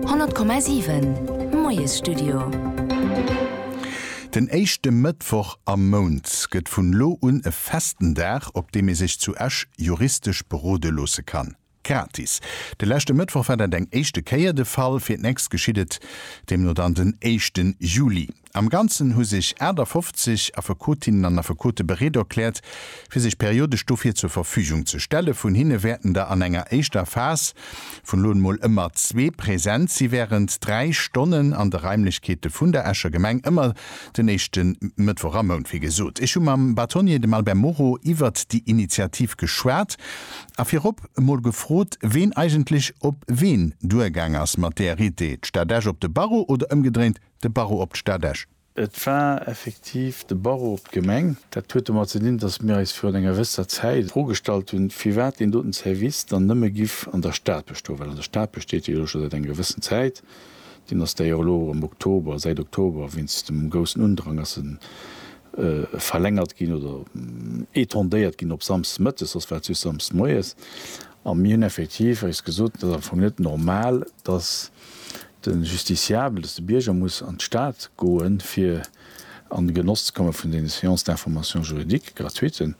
100,7 Moiesstudio. Den éischte Mëttwoch am Mount gëtt vun elo un e festen Dag, op deem ee sech zu Esch juristesch berode loosse kann. Gratis. De leschte Mëttwoch war dat eng éischte Kéier de Fall, fir d'nächst geschitt et deemno dann den éischten Juli. Am Ganzen hu sech 58 Affekotinnen an Affekote bereet erkläert, fir sech periodesch dofir zur Verfügung ze stelle. Vun hinne wäerten der an enger éischter Phas vun elo emol ëmmer zwee präsent si wärend dräi Stonnen an de Raimlechkeete vun der Escher Gemeng, ëmmer den éischte Mëttwoch am Mount. Wéi gesot, ech hu mam Bâtonnier, dem Albert Moreau, iwwert déi Initiativ geschwat a virop emol gefrot, ween eigentlech op ween duergaang ass mat där Idee, d'Stad Esch op de Barreau oder ëmgedréint. De Barreau op d'Stad Esch. Et war effektiv de Barreau op d'Gemeng. Dat huet domat ze dinn, datt mir eis virun enger gewësser Zäit d'Fro gestallt hunn, firwat deen doten Service dann nëmme giff an der Stad bestoen, well an der Stad besteet hie jo scho säit enger gewëssen Zäit. Deen ass däi och elo am Oktober, säit Oktober, wéinst dem groussen Undrang ass en verlängert ginn oder étendéiert ginn op Samsdes mëttes, soss war et just Samsdes moies. A mir hunn effektiv eis gesot, et ass am Fong net normal, datt. De Justiciabel, dass de Bierger muss an d'Stad goen, fir an de Genoss ze komme vun deene Séances d'information juridique gratuiten,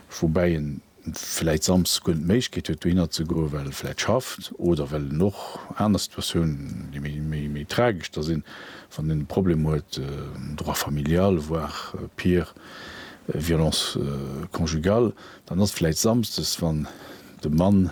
woubäi en vläit samsdes guer net d'Méiglechkeet huet, dohinner ze goen, well e vläit schafft oder well en och aner Situatiounen, déi méi tragesch da sinn, wann en e Problem huet, droit familial, voire pire, violence conjugale, dann ass vläit samsdes, wann de Mann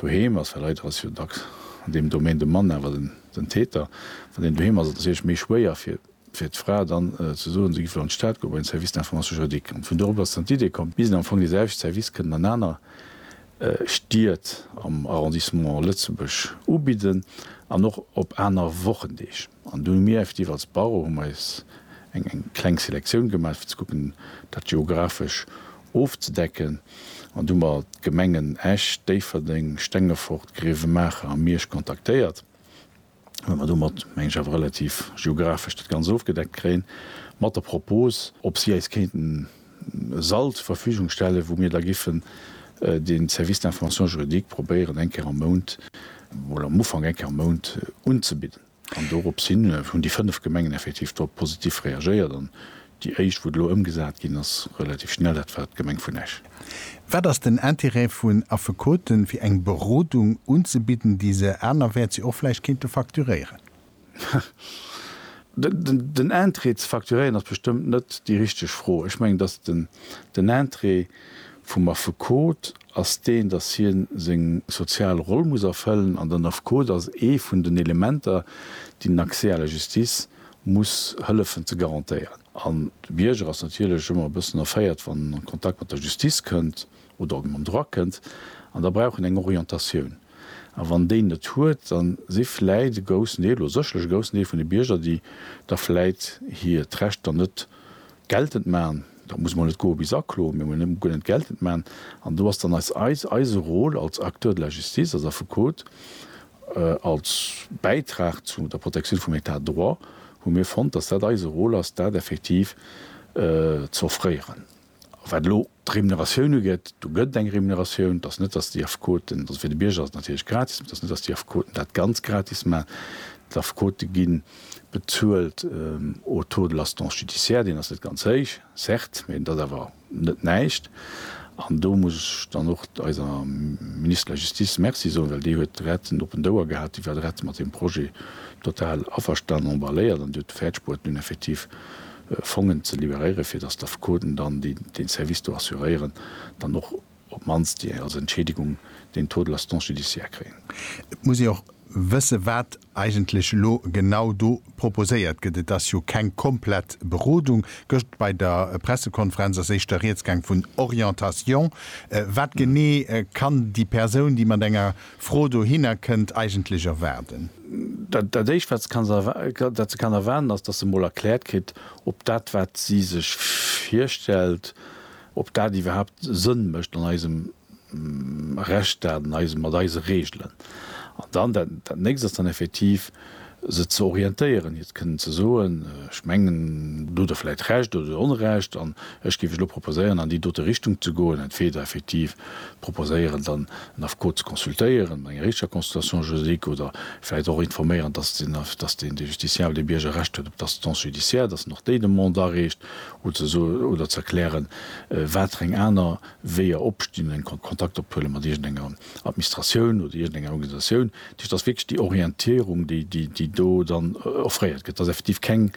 Doheem ass, well leider ass jo dacks an deem Domaine de Mann awer den Täter, wann een doheem ass, ass et natierlech méi schwéier fir d'Fra dann ze soen, se géifen an d'Stad goen, bei den Service d'information juridique. An vun do erop ass dann d'Idee komm, bis am Fong deeselwechte Service kënnen an aner Stied am Arrondissement Lëtzebuerg ubidden an och op aner Wochendeeg. An dunn hu mir effektiv als Barreau hu mer eis eng eng kleng Selektioun gemaach fir ze kucken dat geographesch ofzedecken. An do hu mer d'Gemengen Esch, Déifferdeng, Stengefort, Grevenmacher a Miersch kontaktéiert, well mer domat meng ech awer relativ geographesch dat Ganzt ofgedeckt kréien, mat der Propos ob si eis kéinten e Sall zur Verfügung stellen, wou mir da giffen den Service d'information juridique probéieren eng Kéier am Mount, oder am Ufank eng Kéier am Mount, unzebidden. An dorops hin hunn déi fënnef Gemengen effektiv drop positiv reagéiert an déi éischt, wou et elo ëmgesat ginn ass, relativ schnell, dat war d'Gemeng vun Esch. Wat ass den Intérêt vun Affekoten, fir eng Berodung unzebidden, déi se anerwäerts jo och vläicht kéinte facturéieren? Den Intérêt ze facturéieren ass bestëmmt net déi richteg Fro. Ech mengen, datt den Intérêt vum Affekot ass deen, datt hien seng sozial Roll muss erfëllen an den Affekot ass ee vun den Elementer, déi den Accès à la justice muss hëllefen ze garantéieren. An de Bierger ass natierlech ëmmer e bëssen erféiert, wann en an Kontakt mat der Justice kënnt. oder op d'Mon drakënnt an da brauch en eng Orientatioun. A wann déi en net huet, da si vläit e groussen Deel oder sécherlech e groussen Deel vun de Bierger, déi da vläit hiert Recht dann net geltend maachen, dat muss mol net goe bis Aklo, mee mol net guer net geltend maachen. An do ass dann eis, eis, eise Rôle als Acteur de la justice, als Affekot, als Bäitrag zu der Protektioun vum Etat de droit, hu mir fonnt, dass dat eise Rôle ass, dat effektiv z'offréieren. A wat elo d'Remuneratioun ugeet, do gëtt et eng Remuneratioun. Et ass net, dass déi Affekoten, also fir de Bierger ass et natierlech gratis, mee et ass net, dass déi Affekoten dat ganz gratis maachen. D'Affekote gi bezuelt au taux de l'assistance judiciaire, deen ass net ganz héich, certes, mee dat ass awer net näischt. An do muss ech dann och eiser Ministre de la Justice Merci soen, well déi huet direkt en oppent Ouer gehat. Déi war direkt mat deem Projet total averstanen, emballéiert an déi huet de Fait de sport nun effektiv Fongen ze liberéieren, fir dass d'Affekoten dann, déi dee Service do assuréieren, dann och op d'mannst déi als Entschädigung den Taux de l'assistance judiciaire kréien. Et muss ee och wësse wat eigentlech elo genau do proposéiert gëtt. Et ass jo keng komplett Berodung. Gëscht bei der Pressekonferenz ass éischter Rieds gaang vun Orientation. Wat genee kann déi Persoun, déi mat enger Fro dohinner kënnt eigentlech erwaarden. Dat éischt, wat se kann erwaarden, ass, datt se emol erkläert kritt, ob dat, wat si sech virstellt, ob dat iwwerhaapt Sënn mécht an eisem Rechtsstaat, mat eise Reegelen. An dann dat Nächst ass dann effektiv, se ze orientéieren, hiert kënnen ze soen, ech mengen, do hutt Der vläicht Recht oder do hutt Der Onrecht, an ech géif Iech elo proposéieren, an déi dote Richtung ze goen, entweder effektiv proposéieren, dann en Affekot ze consultéieren, mat enger richteger Consultation juridique, oder vläicht och informéieren, dass den, dass den, de Justiciable, de Bierger Recht huet op d'Assistance judiciaire, dass en och déi Demande areecht, oder ze so, oder ze erklären, watereng aner Weeër opstinn, eng Kon, Kontakt ophuelen mat iergendenger. Administratioun oder iergendeng Organisatioun. Dat heescht, et ass wierklech déi Orientierung, déi do dann offréiert gëtt. Et ass effektiv keng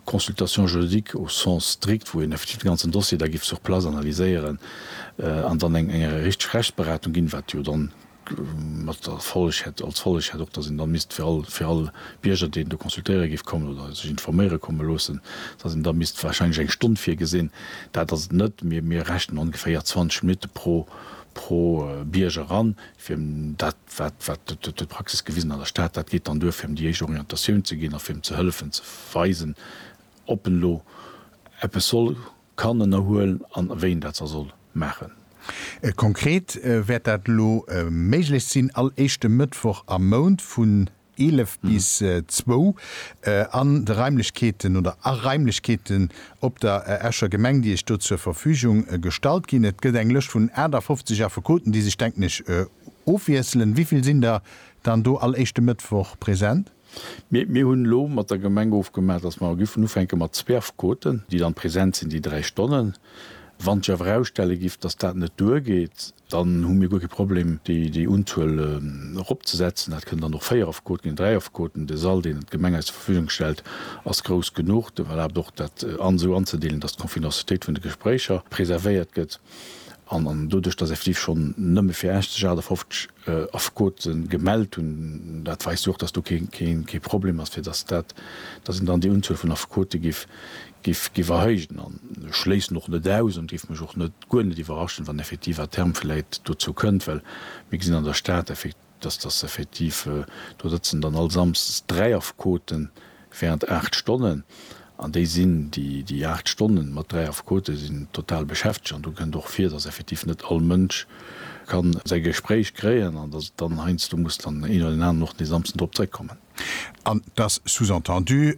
Consultation juridique au sens strict, wou een effektiv de ganzen Dossier da géif sur place analyséieren an dann eng richteg Rechtsberatung ginn, wat jo dann mat der Folleg hätt, als Folleg hätt och, datt een da misst fir all, fir all Bierger, deen do consultéiere géif kommen oder sech informéiere komme loossen, datt een da misst warscheinlech eng Stonn virgesinn. Dat ass et net. Mir rechnen ongeféier 20 Minutte pro Bierger an, fir dat, wat d'Praxis gewisen an der Stad, dat geet dann duer, fir em déi éischt Orientatioun ze ginn a fir em ze hëllefen, ze weisen, ob en elo eppes soll, kann ënnerhuelen an wéi en dat da soll maachen. Konkret wäert dat elo méiglech sinn, all éischte Mëttwoch am Mount vun 11 bis 2 an de Raimlechkeeten oder a Raimlechkeeten op der Escher Gemeng, déi Iech do zur Verfügung gestallt ginn. Et gëtt eng Lëscht vun 58 Affekoten, déi sech, denken ech, ofwiesselen. Wivill sinn der dann do all éischte Mëttwoch present? Mir hunn elo mat der Gemeng ofgemaach, datt mer giffen ufänke mat zwee Affekoten, déi dann present sinn déi dräi Stonnen. Wann sech awer erausstelle giff, datt dat net duergeet, Dann hu mir guer kee Problem, déi Unzuel eropzesetzen. Dat kënnen dann och véier Affekoten ginn, dräi Affekoten. De Sall, deen d'Gemeng eis zur Verfügung stellt, ass grouss genuch. Dat erlaabt och, dat esou anzedeelen, dass d'Confidencialitéit vun de Gespréicher preservéiert gëtt. An doduerch, dass effektiv schonn nëmme fir Esch sech 58 Affekote gemellt hunn, dat weist jo och, dass do kee Problem ass, fir dass dat, dass een dann déi Unzuel vun Affekote géif Giff erhéijen an ech schléissen och net aus an giff mech och net guer net iwwerraschen, wann effektiv à terme vläit dozou kënnt, well mir gesinn an der Stad effektiv, dass dass effektiv do sëtzen dann all Samsdes dräi Affekoten während aacht Stonnen an déi sinn déi déi aacht Stonnen mat dräi Affekoten sinn total beschäftegt an do kënnt och vir, dass effektiv net all Mënsch kann säi Gespréich kréien an dass et dann heiansdo muss dann een oder deen aneren och dee Samsden drop zréckkommen. An et ass sous-entendu,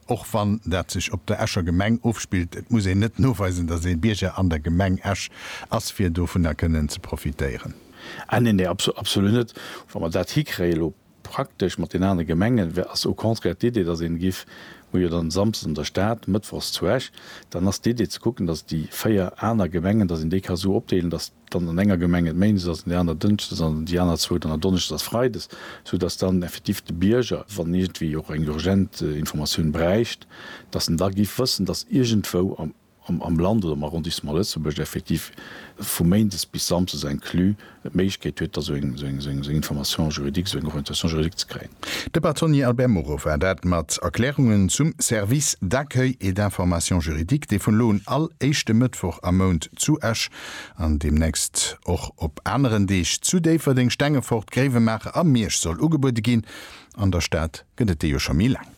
och wann dat sech op der Escher Gemeng ofspillt, et muss een net noweisen, datt ee Bierger an der Gemeng Esch ass, fir dovunner kënnen ze profitéieren. Ah nee, nee, absolut net. Wa mer dat hikréien elo praktesch mat den anere Gemengen, wär, ass au contraire d'Idee, datt een giff, hu jo dann samsdes an der Stad, mëttwochs zu Esch, dann ass d'Idee ze kucken, datt déi véier aner Gemengen, datt een déi ka sou opdeelen, datt, dann an enger Gemeng et méindes ass, an där aner dënschdes an déi aner zwou dann donneschdes a freides, sou datt dann effektiv de Bierger, wann en iergendwéi och eng urgent Informatioun bräicht, datt en da giff wëssen, datt iergendwou am Land oder am Arrondissement Lëtzebuerg effektiv vu méindes bis samsdes inclus e d'Méiglechkeet huet, da sou eng Information juridique, sou eng Orientation juridique ze kréien. De Bâtonnier Albert Moreau war dat mat Erklärungen zum Service d'accueil et d'information juridique, dee vun elo un all éischte Mëttwoch am Mount zu Esch an deemnächst och op aneren Deeg zu Déifferdeng, Stengefort, Gréiwemaacher a Miersch soll ugebuede ginn. An der Stad gëtt et déi jo scho méi laang.